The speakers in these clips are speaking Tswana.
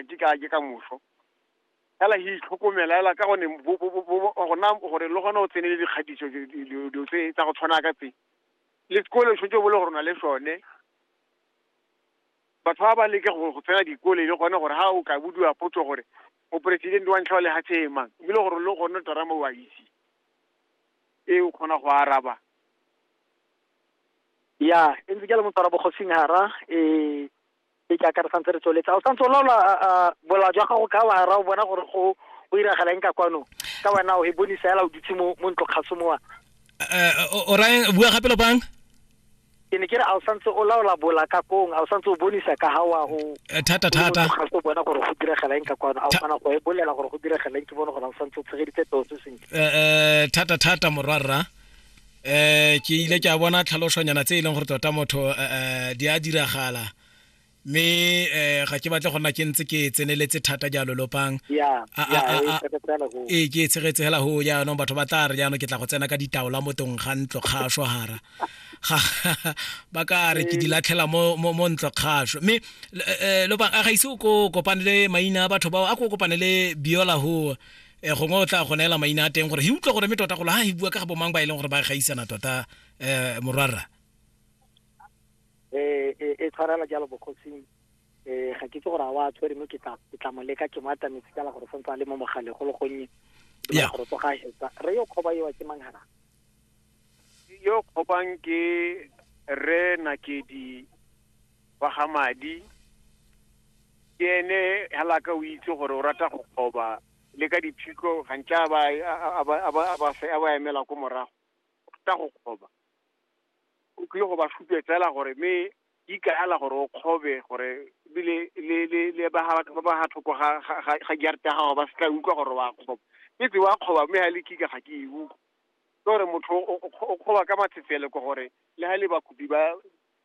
ke ka ke ka moso fela he itlhokomela fela ka gone gona gore le gone o tsenele dikgatiso dilo tse tsa go tshwana ka tse le sekole tshwetse bo le gore na le sone batho ba ba leke go tsena dikole le gone gore ha o ka budiwa potso gore moporesidente wa ntlha wa lehatshe e mang ebile gore le gone terama o a itse e o kgona go araba ya e ntse ke le motswara bogosing hara um e ke akare santse re tsweletsa o santse o laola bola jwa gago ka wara o bona gore go o iragala eng ka kwano ka wena o e bone fela o dutse mo mo ntlo kgaso mowa eh, o raya bua gape lopang ke ne ke re a o santse o laola bola ka kong a o santse o bonisa ka ga wa o eh, thata thata ga se bona gore go diragala eng ka kwano a o kgona go e bolela gore go diragala eng ke bone gore a o santse o tshegeditse toso sentle eh, eh thata thata morwarra eh ke ile ke a bona tlhalosonyana tse e leng gore tota motho eh, eh, di a diragala mme eh ga ke batle go nna ke ntse ke tseneletse thata jalo lopang ee ke e tshegetse fela go jaanong batho ba tla re jaanong ke tla go tsena ka ditaola mo tong ga ntlo kgaso gara ba ka re ke di latlhela mo ntlo kgaso mme eh, eh, lopang a ga ise o ko kopane le maina a batho bao a ko kopane le biola go um gongwe o tla go neela maina a teng gore he utlwa gore me tota golo ga he bua ka ga bomang ba e leng gore ba gaisana tota um morwarra eh, eh, e tshwarela jalo bokgotsing um ga ke itse gore a wa tshwere mme ke tla mo leka ke mo atametse kala gore santse a le mo mogale go le gonnye gore tsoga hetsa re yo kgoba ewa ke mang gana yo kgobang ke re nakedi wa ga madi ke ene hela ka o itse gore o rata go qoba le ka diphiko gantsi a ba a ba- a ba- a ba fe- a ba emela ko morago o rata go qoba o tlile go ba supetsela gore mme di kaela gore o kgobe gore ebile le le le ba ga- ba ba ga thoko ga ga- ga- ga jarete ya gago ba se tla utlwa gore wa kgoba e tse wa kgoba mme ga le kika ga ke e utlwa ke gore motho o- o o kgoba ka matsetsele ko gore le ga le bakopi ba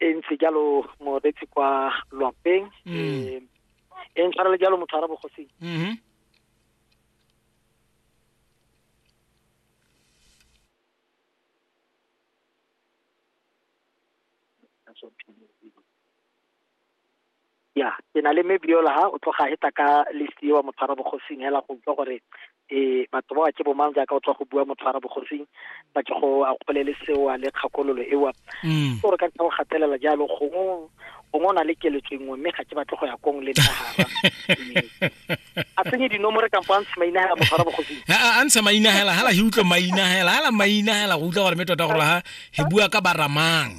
e ntse jalo morebetsi kwa lwapeng um e ntshwarele jalo motho a ra bogosing mhm ya ke na le mebiola ha o tloga heta ka list eo wa motshwara bogosing hela go utlwa gore um batho ba ke bomang jaaka o tswa go bua motshwara bogosing ba ke go a kgolele sewa le kgakololo ewa mm. gore ka ntlha go gatelela jalo gongwe gongwe o na le keletso nngwe mme ga ke batle go ya kong le nagara a tsenye dinomore kampo a ntshe mainagela motshwara bogosing a ntshe mainagela hala he utlwe mainagela hala mainagela go utlwa gore me tota gore ha he bua ka baramang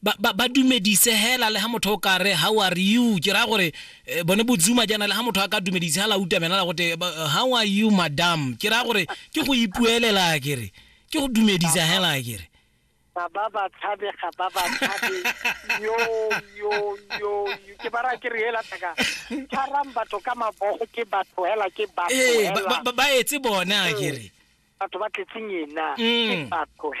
Ba, ba, ba dumedise hela le ha motho o ka re, How are you? Ke raya gore, eh, bone Bozuma jaana, le ha motho a ka dumedise ha la utamela la gote, ba- How are you, madam? Ke raya gore, ke go ipuelela ke re. Ke go dumedisa hela ke re. ga ba ba tshabe ga ba ba tshabe yo yo yo yo. ke bara ke re hela taka tshwarang batho ka mabogo ke batho hela ke batho Ee, ba, hela ba, ba, ba etse bone a ke re. batho ba tletseng ena ke Mm. batho